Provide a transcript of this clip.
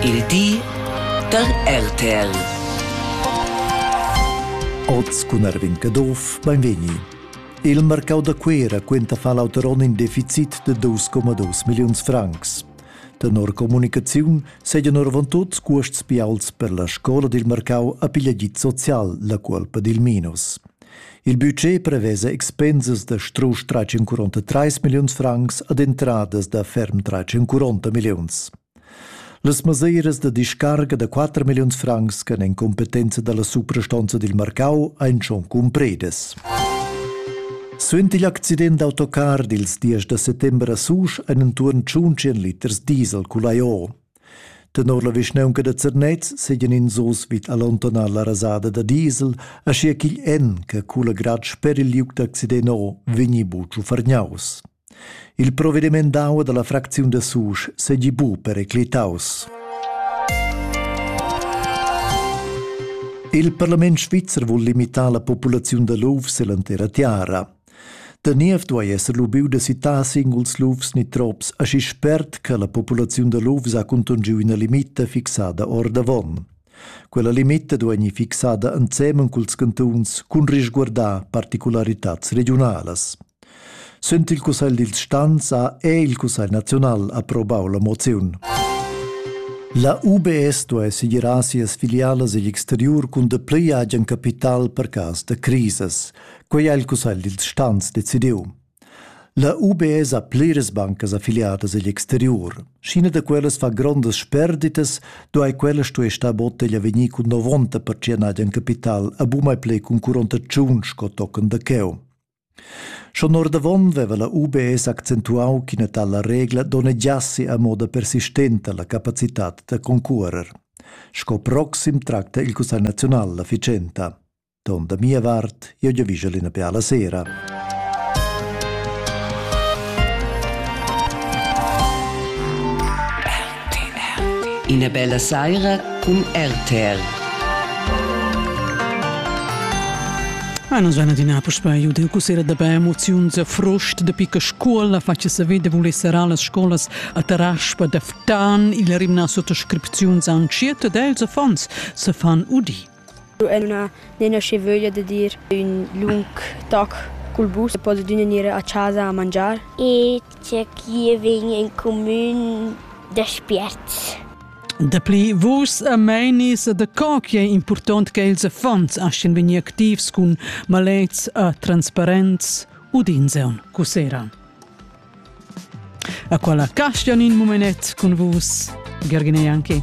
Il di da RTL. Oz cun Erwin Caduff, beinvegni. Il marcau da Cuera quenta fa l'auter onn in deficit de 2,2 milliuns francs. Tenor comunicaziun segan orvantut cuosts bials per la scola dil marcau a pigliagit social, la cuolpa dil minus. Il budget prevesa expensas da strusch 343 milliuns francs ad entradas da ferm 340 milliuns. Las mesiras da discarga da 4 milliuns francs che en competenza dalla suprastonza dil marcau ein schon cumpredes. Suenter l'accident d'autocar dils 10 da settembre a Susch ein entuorn 100 liters diesel culai Tenor la vischnaunca da Zernez seigien ins oz vid allontanar la rasada da diesel, aschia ch'igl en che cula grad sper il liug d'accident o vegni buc ufarniaus. Il provvediment d'aua dalla fracziun da Susch seigi bu periclitaus. Il parlament svizzer vul limitar la populaziun da luf ell'entera tiara. Da niev duei esser lubiu da sittar singuls lufs ni trops aschi spert che la populaziun da lufs ha contungiu ina limita fixada ordavon. Quella limita duei fixada ensemen culs cantuns cun risguardar particularitads regiunalas. Sent il Cussegl dils Stans ha è il Cussegl nazional approbau la moziun. La UBS duei segirar sias filialas egl exteriur cun de pli agen capital per cas da crises. Quei ha il cussegl dils stans decidiu. La UBS ha pliras bancas affiliadas egl exteriur. Scina da quellas fa grondas sperditas, duai quella stuer star botteglia vegnir cun 90% agen capital a bumai plei cun 45 sco tochen da cheu. Schon ordavon veva la UBS accentuau ch'ina tala regla donnegiassi a moda persistenta la capacitad da concurer. Sco proxim tracta il Cussegl naziunal la ficenta. Don da mia vart, io giavischel ina beala sera. Ina bella saira cun RTL. Ah, non sono di Napoli, io devo considerare da bei emozioni a frost de picca scuola, faccio sapere de voler sarà las scuolas a Taraspa de Ftan, il rimna sotto scripzioni an circa dels affons se fan udì. Lu ei lu ina aschi veglia dad ir ün lung toc cul bus e poss adüna gnir a chasa a mangiar. E tgei ch'i vegn in cumün da spiert. Dapli vus e meinis da co che ei impurtont ch'ils affons astgan vegnir activs cun malets e transparents udins aunc cussera. A quella castan in mumenet cun vus, Gergina Janki.